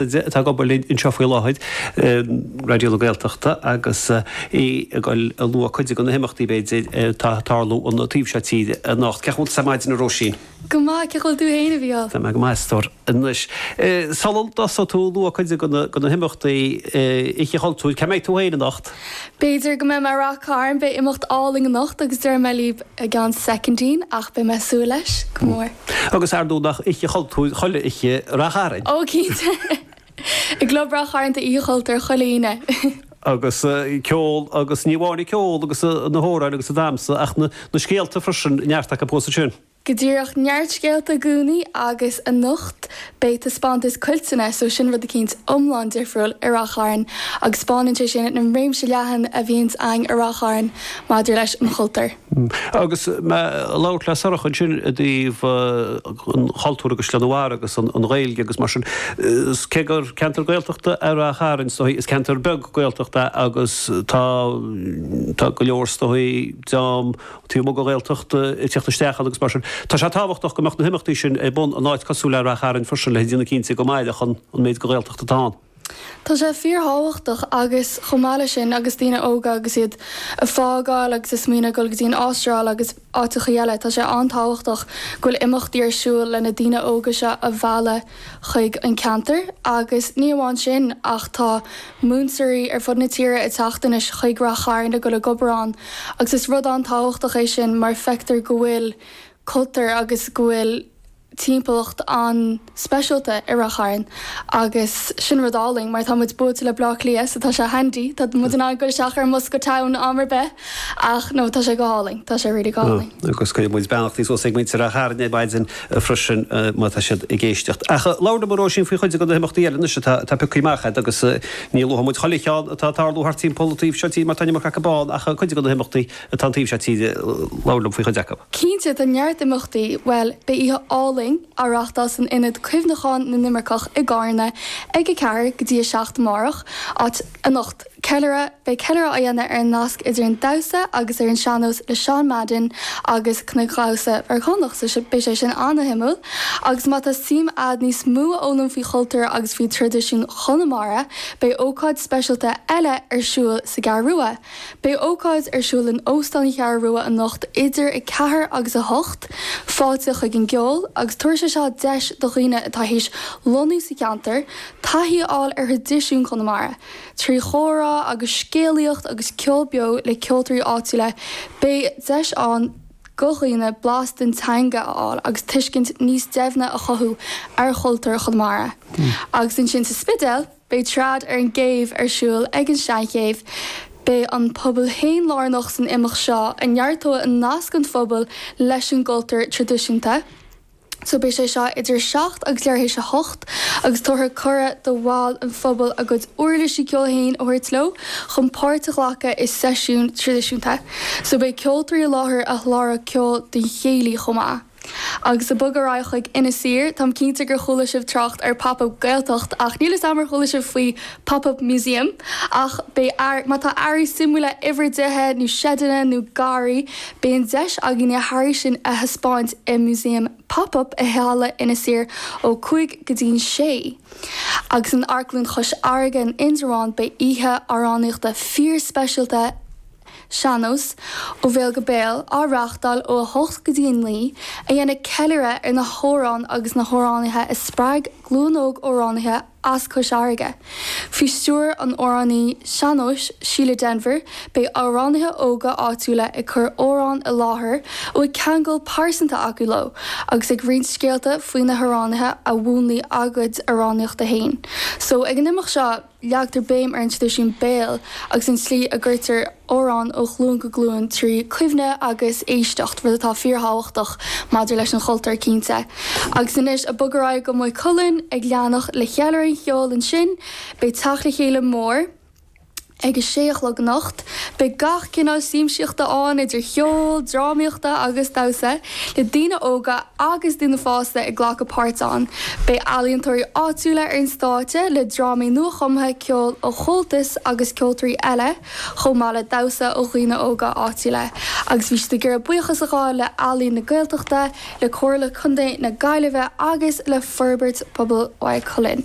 atá ag obair linn anseo faoi láthair, Raidió na Gaeltachta, agus í ag dul a lua cuid de na himeachtaí, b'fhéidir, atá ag tarlú an taobh seo tíre anocht. Cén chaoi a bhfuil tú ar maidin, a Róisín? Go maith, cén chaoi a bhfuil tú féin, a Mhícheáil? Tá mé go maith, a stór. Anois, sula dtosaíonn tú ag lua cuid de na himeachtaí Oíche Chultúir, cá mbeidh tú féin anocht? B'fhéidir go mbeidh mé i Ráth Chairn, beidh imeacht álainn anocht agus déarfaidh mé libh i gceann soicindín ach beidh mé ag súil leis go mór. Agus ar ndóigh nach oíche chultúir chuile oíche i Ráth Chairn. Ó cinnte! I gClub Ráth Chairn tá Oíche Chultúir chuile Aoine. Agus an ceol agus ní amháin an ceol agus na hamhráin agus an damsa ach na scéalta freisin, neart acu fós ansin. go díreach neart scéalta i gcónaí agus anocht beidh taispeántas cuilteanna so sin rud eicínt iomlán difriúil i Ráth Chairn agus spáineann sé sin an réimse leathan a bhíonns a'inn i Ráth Chairn maidir leis an chultúr. Agus mé a' labhairt le Sorcha ansin i dtaobh an chultúr agus Sliabh na Bharr agus an Ghaeilge agus mar sin, 's cé gur ceantar Gaeltachta é Ráth Chairn 's dóigh is ceantar beag Gaeltachta é agus tá, tá go leor 's dóigh dream taobh amuigh de Ghaeltacht ag tíocht isteach ann agus mar sin. Tá sé tábhachtach go mbeadh na himeachtaí sin ar bun in áit cosúil le Ráth Chairn freisin le déanamh cinnte go mairfeadh an méid de Ghaeltacht atá ann. Tá sé fíorthábhachtach agus chomh maith leis sin agus daoine óga agus iad ag fágáil agus ag smaoineamh ag dul go dtí an Astráil agus áiteachaí eile, tá sé an-tábhachtach go bhfuil imeachtaí ar siúl le na daoine óga seo a mhealladh. chuig an ceantar agus ní amháin sin ach tá múinteoirí ar fud na tíre ag teacht anois chuig Ráth Chairn le dul ag obair ann agus is rud an-tábhachtach é sin mar feictear go bhfuil cultúr agus go bhfuil timpeallacht an-speisialta i Ráth Chairn agus sin rud álainn mar tá muid buailte le Bleá Cliath so tá sé handy tá muid in ann dul isteach ar an mbus go town am ar bith ach no tá sé go hálainn tá sé really go hálainn. Agus cuireann muid beannachtaí suas ag muintir Ráth Chairn ar maidin. freisin má tá siad ag éisteacht. Ach labhair liom a Róisín faoi chuid de na himeachtaí eile anois atá pioctha amach agat agus ní luafaidh muid chuile cheann atá ag tarlú thart timpeall an taobh seo tíre mar tá an iomarca acu ann ach cuid de na himeachtaí atá an taobh seo tíre labhair liom faoi chuid acu. Cinnte tá neart imeachtaí, bhuel beidh oíche álainn á reáchtáil san Ionad Cuimhneacháin na nImirceach i gCárna ag 4 go dtí 7 amárach, á, anocht, Ceiliúradh, Beidh ceiliúradh á dhéanamh ar an nasc idir an damhsa agus ar an sean-nós le Seán Madden agus cnagdhamhsa Meiriceánach, so sin, beidh sé sin an-shuimiúil. Agus má tá suim agat níos mó a fhoghlaim faoi chultúr agus faoi thraidisiún Chonamara, beidh ócáid speisialta eile ar siúl sa gCeathrú Rua. Beidh ócáid ar siúl in Óstán an Cheathrú Rua anocht idir 4 agus 8, fáilte chuig an gceol, agus tabharfaidh sé seo deis do dhaoine atá tar éis lonnú sa cheantar, taithí a fháil ar thraidisiún Chonamara. Trí chomhrá agus scéalaíocht agus ceol beo le ceoltóirí áitiúla, beidh deis ann do dhaoine blas den teanga a fháil agus tuiscint níos deimhne a chothú ar chultúr Chonamara. Agus ansin sa Spidéal, beidh Trad ar an gCéibh ar siúl ag an Seanchéibh. Beidh an pobal féin lárnach san imeacht seo a neartóidh nasc an phobail leis an gcultúr traidisiúnta. so beidh sé seo idir 7 agus leathuair tar éis a 8 agus tabharfar cuireadh do bhaill an phobail a gcuid uirlisí ceoil féin a thabhairt leo chun páirt a ghlacadh i seisiún traidisiúnta. So beidh ceoltóirí i láthair a sholáthróidh ceol don chéilí chomh maith. Agus ag bogadh ar aghaidh chuig Inis Oírr, táim cinnte gur chuala sibh trácht ar Pop Up Gaeltacht ach níl 'fhios a'm ar chuala sibh faoi pop-up museum, ach beidh, má tá earraí suimiúla in bhur dtithe nó seideanna nó garraí, beidh an deis agaibh na hearraí sin a thaispeáint i Museum Pop-up i halla Inis Oírr ó 5 go dtí'n 6. Agus in Amharclann Chois Fharraige in Indreabhán beidh oíche amhránaíochta fíorspeisialta Sean-Nós, Ó Bhéal go Béal, á reáchtáil ó 8 go dtí 9, a dhéanfaidh ceiliúradh ar na hamhráin agus na hamhránaithe a spreag glúin óg amhránaithe as Cois Fharraige. Faoi stiúir an amhránaí sean-nóis Síle Denvir, beidh amhránaithe óga áitiúla ag cur amhráin i láthair a bhfuil ceangal pearsanta acu leo agus ag roinnt scéalta faoi na hamhránaithe a mhúnlaigh a gcuid amhránaíochta féin. So ag an imeacht seo, leagtar béim ar an traidisiún béil agus an tslí a gcuirtear amhráin ó ghlúin go glúin trí chuimhne agus éisteacht, rud atá fíorthábhachtach maidir leis an gcultúr, cinnte. Agus anois ag bogadh ar aghaidh go Maigh Cuilinn, ag leanacht le ceiliúradh an cheoil ansin, beidh teacht le chéile mór ag a sé a chlog anocht. Beidh gach cineál siamsaíochta ann, idir cheol, drámaíochta agus damhsa, le daoine óga agus daoine fásta ag glacadh páirt ann. Beidh ealaíontóirí áitiúla ar an stáitse le drámaí nua-chumtha, ceol ó Chomhaltas agus ceoltóirí eile, chomh maith le damhsa ó dhaoine óga áitiúla, agus bhí siad do m'iarraidh buíochas a ghabháil le Ealaín na Gaeltachta, le Comhairle Contae na Gaillimhe agus le Forbairt Pobail Mhaigh Cuilinn.